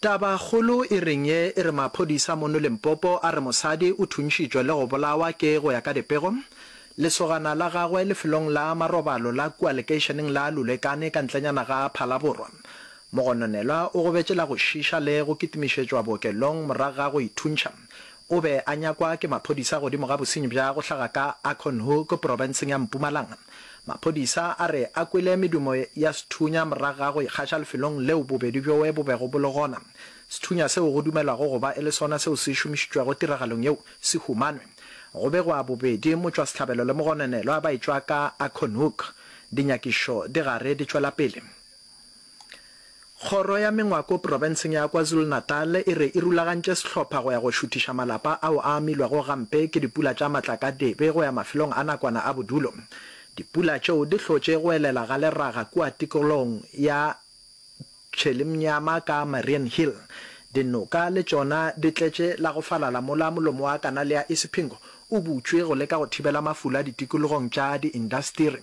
Taba kgolo e reng ye e re maphodisa mono Limpopo a re mosadi o thuntšitšwe le go bolawa ke go ya ka dipego, lesogana la gagwe lefelong la marobalo la kua lekeišeneng la Lulekane ka ntlenyana ga Phalaborwa. Mogononelwa o gobetše la go šiša le go kitimišetšwa bookelong morago ga go ithuntšha O be a nyakwa ke maphodisa godimo ga bosenyi bja go hlaga ka Acornhoek, porofenseng ya Mpumalanga. Maphodisa a re a kwele medumo ya sethunya morago ga go ikgaša lefelong leo bobedi bjoe bo bego bo le gona. Sethunya seo go dumelwago go ba e le sona seo se šomišitšwego tiragalong yeo se humanwe. Go begwa bobedi motšwasehlabelo le mogononelwa ba etšwa ka Acornhoek. Dinyakišo di gare di tšwela pele. Kgoro ya Mengwako Profenseng ya KwaZulu-Natal e re e rulagantše sehlopha go ya go šuthiša malapa ao a amilwego gampe ke dipula tša matlakadibe go ya mafelong a nakwana a bodulo. Dipula tšeo di hlotše go elela ga leraga kua tikologong ya Tshelimnyama ka Mariannhill. Dinoka le tšona di tletše la go falala mola molomo wa kanale ya Isipingo o butšwe go leka go thibela mafula ditikologong tša diindasteri.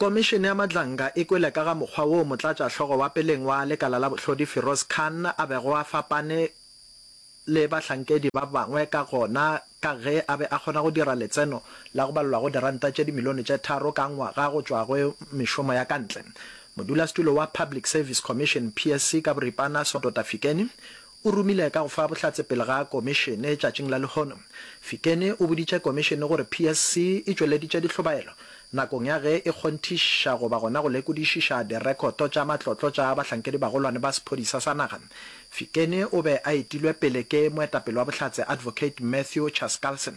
Komišene ya Madlanga e kwele ka ga mokgwa woo motlatšahlogo wa peleng wa lekala la bohlodi Firoz Khan a bego a fapane le bahlankedi ba bangwe ka gona ka ge a be a kgona go dira letseno la go balelwa go diranta tše dimilione tše tharo ka ngwaga go tšwa go mešomo ya ka ntle. Modulasetulo wa Public Service Commission, PSC, ka boripana, Soto Tafikeni, o romile ka go fa bohlatse pele ga Komišene tšatšing la lehono. Fikeni o boditše Komišene gore PSC e tšweleditše dihlobaelo nakong ya ge e kgonthiša goba gona go lekodišiša direkoto tša matlotlo tša bahlankedibagolwane ba sephodisa sa naga. Fikeni o be a etilwe pele ke moetapele wa Bohlatse Advocate Matthew Chaskalson.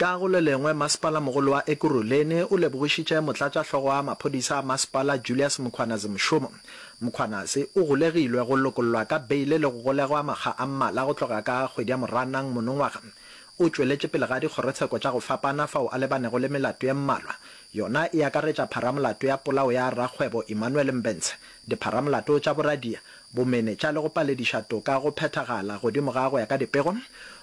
Ka go le lengwe, Masepala-mogolo wa Ekurhuleni o lebogišitše Motlatšahlogo wa Maphodisa a Masepala Julius Mkhwanazi mošomo. Mkhwanazi o golegilwe go lokollwa ka beile le go golegwa makga a mmala go tloga ka kgwedi ya Moranang monongwaga. O tšweletše pele ga dikgorotsheko tša go fapana fao a lebanego le melato ye mmalwa. Yona e akaretša pharamolato ya polao ya rakgwebo Emmanuel Mbentshe, dipharamolato tša boradia, bomenetša le go palediša toka go phethagala godimo ga go ya ka dipego,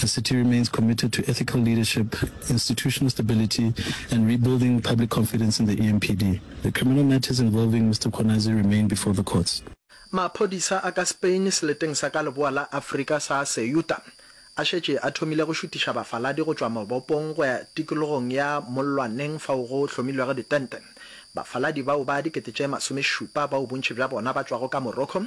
The city remains committed to ethical leadership, institutional stability and rebuilding public confidence in the EMPD. The criminal matters involving Mister Khwanazi remain before the courts. Maphodisa a ka Spain seleteng sa ka leboa la Afrika sa Ceuta a šetše a thomile go šutiša bafaladi go tšwa mabopong go ya tikologong ya mollwaneng fao go hlomilwego ditente bafaladi bao ba dikete tše masomešupa bao bontši bja bona ba tšwago ka Morocco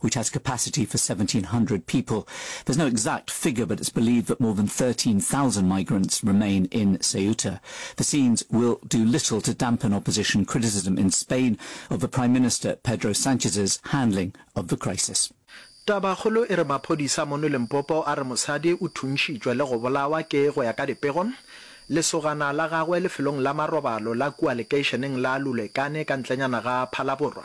which has capacity for 1,700 people. There's no exact figure, but it's believed that more than 13,000 migrants remain in Ceuta. The scenes will do little to dampen opposition criticism in Spain of the Prime Minister Pedro Sanchez's handling of the crisis. Tabakgolo e re maphodisa mono Limpopo a re mosadi o thuntšhitšwe le go bolawa ke go ya ka dipego, lesogana la gagwe lefelong la marobalo la kua lekeišeneng la Lulekane ka ntlenyana ga Phalaborwa.